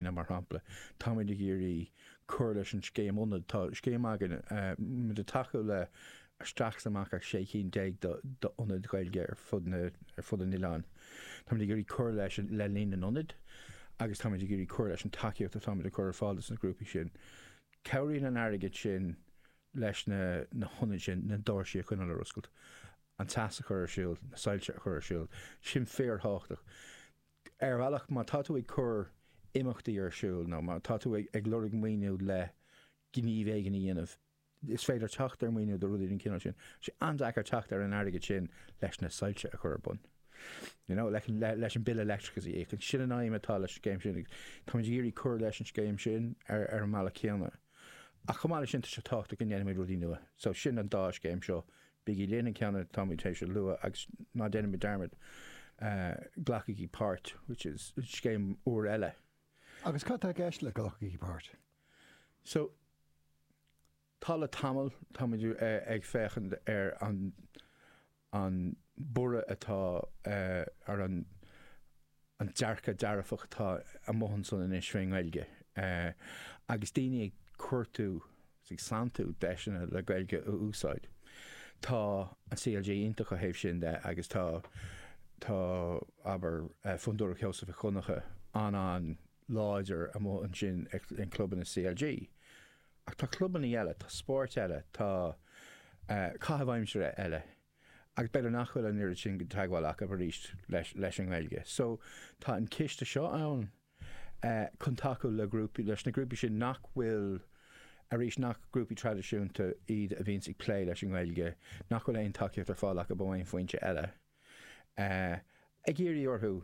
Mar shampla, táimíd ag iarraidh cur leis an scéim ionad. Tá scéim againn, muid ag tacú le isteach is amach le 16 cinn d'ionaid Ghaeilge ar fud an oileáin. Táimid ag iarraidh cur le, le líon na n-ionad agus táimid ag iarraidh cur leis an tacaíocht atá muid ag cur ar fáil dos na grúpaí sin. Cabhraíonn an airgead sin leis na hionaid sin, na doirsí a choinneáil ar oscailt, an teas a chur ar siúl, na soilse a chur ar siúl. Sin fíor-thábhachtach. Ar bhealach má tá tú ag cur imeachtaí ar siúl nó má tá tú ag lorg maoiniú le gníomhaíochtaí a dhéanamh, is féidir teacht ar maoiniú do rudaí den chineál sin. An-deacair teacht ar an airgead sin leis na soilse a chur ar bun, you know, leis an bille leictreachais a íoc. Sin an aidhm atá leis an scéim sin agus táimid ag iarraidh cur leis an scéim sin ar an mbealach céanna. Ach chomh maith leis sin tá sé tábhachtach go ndéanfaimid rudaí nua. So sin an dá scéim seo Bígí linn an ceann eile, táimíd tar éis a lua, agus ná déanaimis dearmad, glacaigí páirt, which is scéim úr eile. Agus cad tá i gceist le glacaigí páirt? So, tá le tamall, táimid ag féachaint ar an, an borradh atá ar an, an dearcadh dearfach atá amuigh ansan anois faoin nGaeilge agus daoine ag cuartú agus ag santú deiseanna le Gaeilge a úsáid. Tá an CLG iontach ó thaobh sin de agus tá, tá, abair, Fondúireacht Sheosaimh Mhic Dhonncha an-an-láidir amuigh ansin i measc clubanna CLG. Ach tá clubanna eile, tá spóirt eile, tá caithimh aimsire eile. Agus b'fhéidir nach bhfuil an oiread sin teagmháil acu arís leis an nGaeilge. So tá an ciste seo ann chun tacú le grúpaí, leis na grúpaí sin nach bhfuil, arís, nach grúpaí traidisiúnta iad a bhíonns ag plé leis an nGaeilge, nach bhfuil aon tacaíocht ar fáil acu ó aon foinse eile. Ag iarraidh orthu,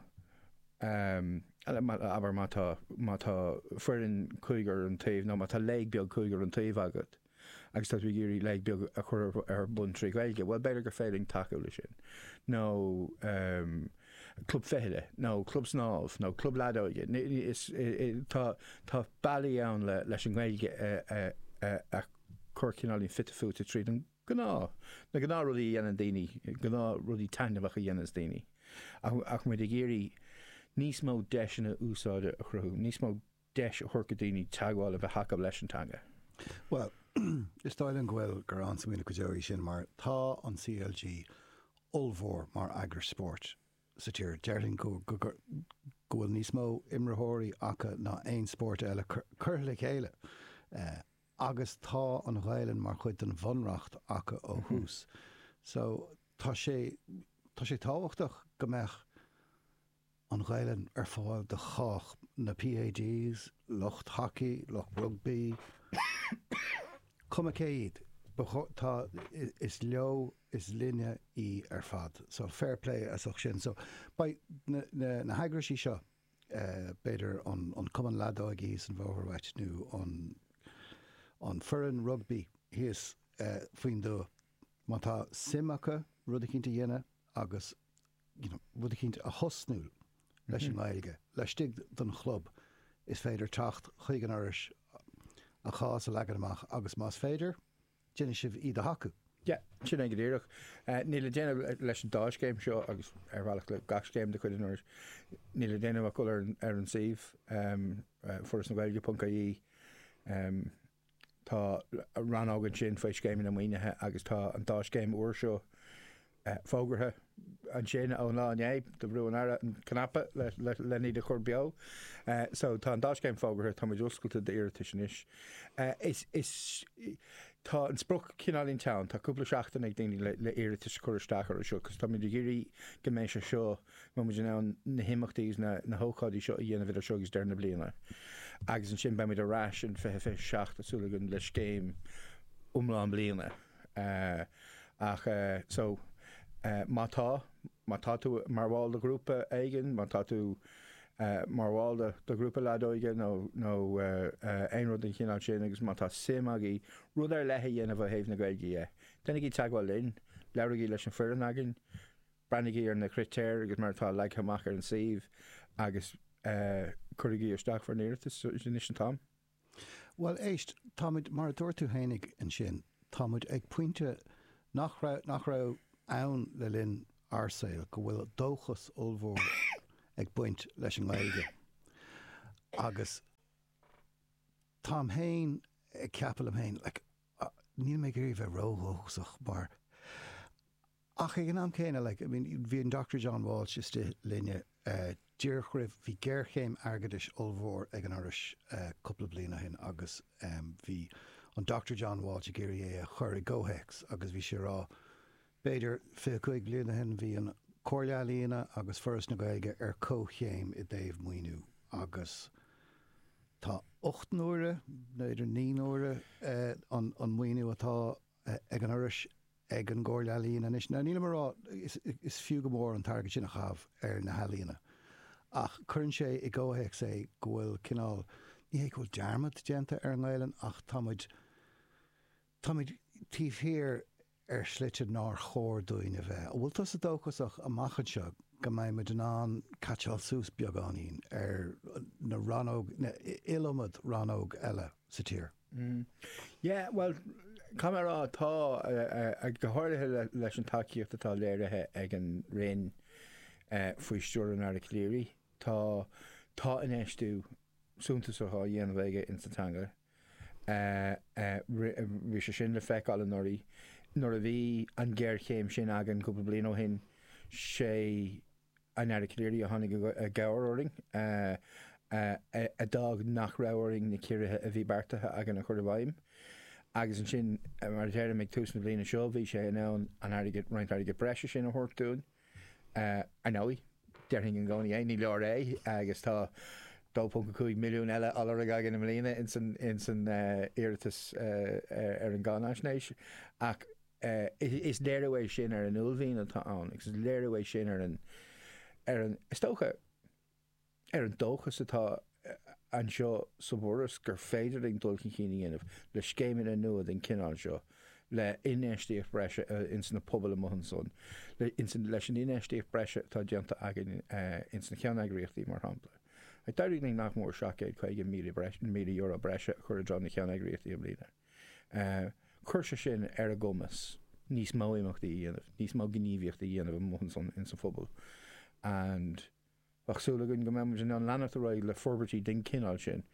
abair má tá foireann cúigear an taobh, nó má tá léig beag cúigear an taobh agat, agus tá tú ag iarraidh léig beag a chur ar bun trí Ghaeilge, bhuel, b'fhéidir gur féidir linn tacú leis sin. Nó club fichille, nó club snámh, nó club leadóige. Tá bealaí ann leis an nGaeilge a chur cineáilín fite fuaite tríd an gnáth, na gnáth rudaí a dhéanann daoine, gnáth rudaí taitneamhacha a dhéananns daoine. Ach muid ag iarraidh níos mó deiseanna úsáide a chruthú, níos mó. deis a thabhairt do dhaoine teagmháil a bheith acu leis an teanga. Bhuel, is dóigh liom go bhfuil, gur an-smaoineamh go deo í sin mar tá an CLG ollmhór mar eagras spóirt sa tír. Déarfainn go bhfuil níos mó imreoirí acu ná aon spórt eile curtha le chéile agus tá an Ghaelainn mar chuid den Bhunreacht acu ó thús. So tá sé, tá sé tábhachtach go mbeadh, an Ghaeilge ar fáil do chách, na PAGs, lucht haca, lucht rugbaí, cuma cé iad, ba chóir, tá, is leo, is linne í ar fad. So, fair play as ucht sin. So, beidh na, na heagraisí seo, b'fhéidir an, an Cumann Leadóige san Bhóthar Ait nó an, an foireann rugbaí thíos faoin dtuath, má tá suim acu rud eicínt a dhéanamh agus you know, rud eicínt a thosnú leis an nGaeilge laistigh den chlub, is féidir teacht chuig an Fhorais a chás a leagan amach agus más féidir, déanfaidh sibh iad a thacú. Yeah, sin é go díreach. Níl le déanamh leis an dá scéim seo agus ar bhealach le gach scéim de chuid an Fhorais, níl le déanamh ach dul ar an suíomh, foras na gaeilge ponc ie, Tá rannóg ansin faoi scéimeanna maoinithe agus tá an dá scéim úr seo fógartha ansin ón lá inné. Bhrúigh an tAire an cnaipe lena iad a chur beo. So tá an dá scéim fógartha, tá muid oscailte d'iarratais anois. Is tá an sprioc cineáilín teann, tá cúpla seachtain ag daoine le iarratais a chur isteach orthu seo cos táimid ag iarraidh go mbeidh sé seo, mbeidh muid in ann na himeachtaí agus na hócáidí seo a dhéanamh idir seo agus deireadh na bliana agus ansin beidh muid ar ais in 2027 tá súil againn le scéim iomlán bliana ach so má tá, má tá tú mar bhall de ghrúpa éigin, má tá tú mar bhall de ghrúpa leadóige nó, nó aon rud den chineál sin agus má tá suim agaibh rud ar leith a dhéanamh ó thaobh na Gaeilge dhe, déanaigí teagmháil linn, labhraígí leis an foireann againn. Breathnaígí ar na critéir agus mar atá leagtha amach ar an suíomh agus cuirigí isteach bhur n-iarratais anois an t-am. Bhuel, éist, táimid, mar a dúirt tú féin ansin, táimid ag pointe nach raibh, nach raibh ann le linn ár saoil, go bhfuil dóchas ollmhór ag baint leis an nGaeilge. Agus táim féin ag ceapadh liom féin, like, Níl mé ag iarraidh a bheith ró-dhóchasach mar. Ach ag an am céanna, like, I mean, bhí an Dochtúir John Walsh istigh linne díreach roimh, bhí géarchéim airgeadais ollmhór ag an Fhorais cúpla bliain ó shin agus bhí an Dochtúir John Walsh ag iarraidh é a chur i gcomhthéacs agus bhí sé a rá, B'fhéidir 25 bliain ó shin bhí an Comhairle Ealaíon agus Foras na Gaeilge ar comhchéim i dtaobh maoiniú agus tá ocht n-uaire, b'fhéidir naoi n-uaire, an maoiniú atá ag an Fhoras ag an gComhairle Ealaíon anois. Now nílim a rá, is fiú go mór an t-airgead sin a chaitheamh ar na healaíona ach cuireann sé i gcomhthéacs é go bhfuil cineál, ní hé go bhfuil dearmad déanta ar an nGaelainn ach tá muid, Táimid taobh thiar ar shlite nár chóir dúinn a bheith. An bhfuil tusa dóchasach amach anseo go mbeidh muid in ann caitseáil suas beagáinín ar na rannóg, na iliomad rannóg eile sa tír? Yeah, bhuel, caithfidh mé a rá, tá, go háirithe leis an tacaíocht atá léirithe ag an Roinn faoi stiúir an Aire Calleary, tá, tá infheistiú suntasach á dhéanamh aige insa teanga. Bhí sé sin le feiceáil anuraidh nuair a bhí an ghéarchéim sin againn cúpla bliain ó shin. 'Sé an Aire Calleary a tháinig i gcabhair orainn, a d'fhág nach raibh orainn na ciorruithe a bhí beartaithe againn a chur i bhfeidhm. Agus ansin, mar a deirim, ag tús na bliana seo bhí sé in ann an airgead, roinnt airgid breise sin a thabhairt dúinn. I know, déarfainn i gcónaí é, ní leor é agus tá 2.5 milliún eile á lorg againn i mbliana ins an iarratas ar an gcáinaisnéis. Ach is léiriú é sin ar an uaillmhian atá ann agus is léiriú é sin ar an, is dócha, ar an dóchas atá anseo sa bhForas gur féidir linn dul chun cinn a dhéanamh le scéimeanna nua den chineál seo, le infheistíocht breise ins na pobail amuigh ansan, leis an infheistíocht breise atá déanta againn ins na ceanneagraíochtaí mar shampla. D'éirigh linn nach mór €750,000 breise a chur i dtreo na gceanneagraíochtaí i mbliana. Chuir sé sin ar a gcumas níos mó imeachtaí a dhéanamh, níos mó gníomhaíochtaí a dhéanamh amuigh ansan ins an phobal and bheadh súil againn go mbeadh muid in ann leanacht ar aghaidh le forbairtí den chineál sin,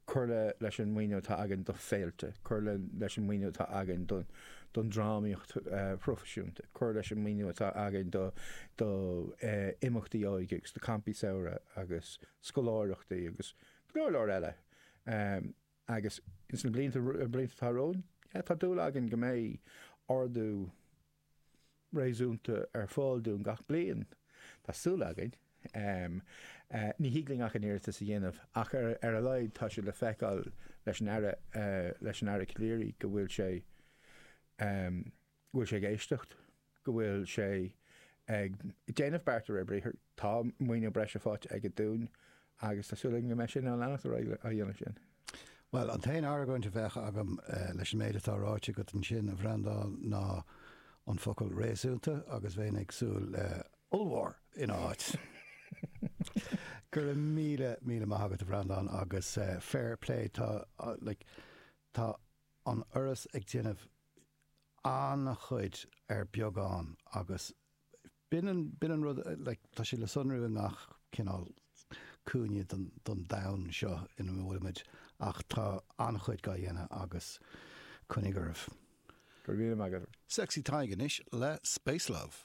cur le, leis an maoiniú atá againn do féilte, cur le, leis an maoiniú atá againn don, don drámaíocht phroifisiúnta, cur leis an maoiniú atá againn do, do imeachtaí óige agus do campaí samhraidh agus scoláireachtaí agus go leor leor eile. Agus ins na blianta atá romhainn, yeah, tá dúil againn go mbeidh ardú réasúnta ar fáil dúinn gach bliain. Tá súil againn. Ní thig linn ach an iarratas a dhéanamh ach ar a laghad tá sé le feiceáil leis an Aire, leis an Aire Calleary go bhfuil sé, go bhfuil sé ag éisteacht, go bhfuil sé ag déanamh beart de réir briathar. Tá maoiniú breise faighte aige dúinn agus tá súil againn go mbeidh sé in ann leanacht ar aghaidh á dhéanamh sin. Bhuel, an t-aon argóint a bheadh agam leis an méid atá ráite agat ansin, a Bhreandáin, ná an focal 'réasúnta' agus bheinn ag súil le 'ollmhór' ina áit. Go raibh míle, míle maith agat, a Bhreandáin, agus fair play, tá, like, tá an Fhoras ag déanamh an-chuid ar bheagán agus b'in an rud, like, tá sé le sonrú i ngach cineál cúinne don domhan seo ina bhfuilimid ach tá an-chuid dhá dhéanamh agus coinnigh oraibh. Go raibh míle maith agat. Sexy Tadhg anois le Space Love.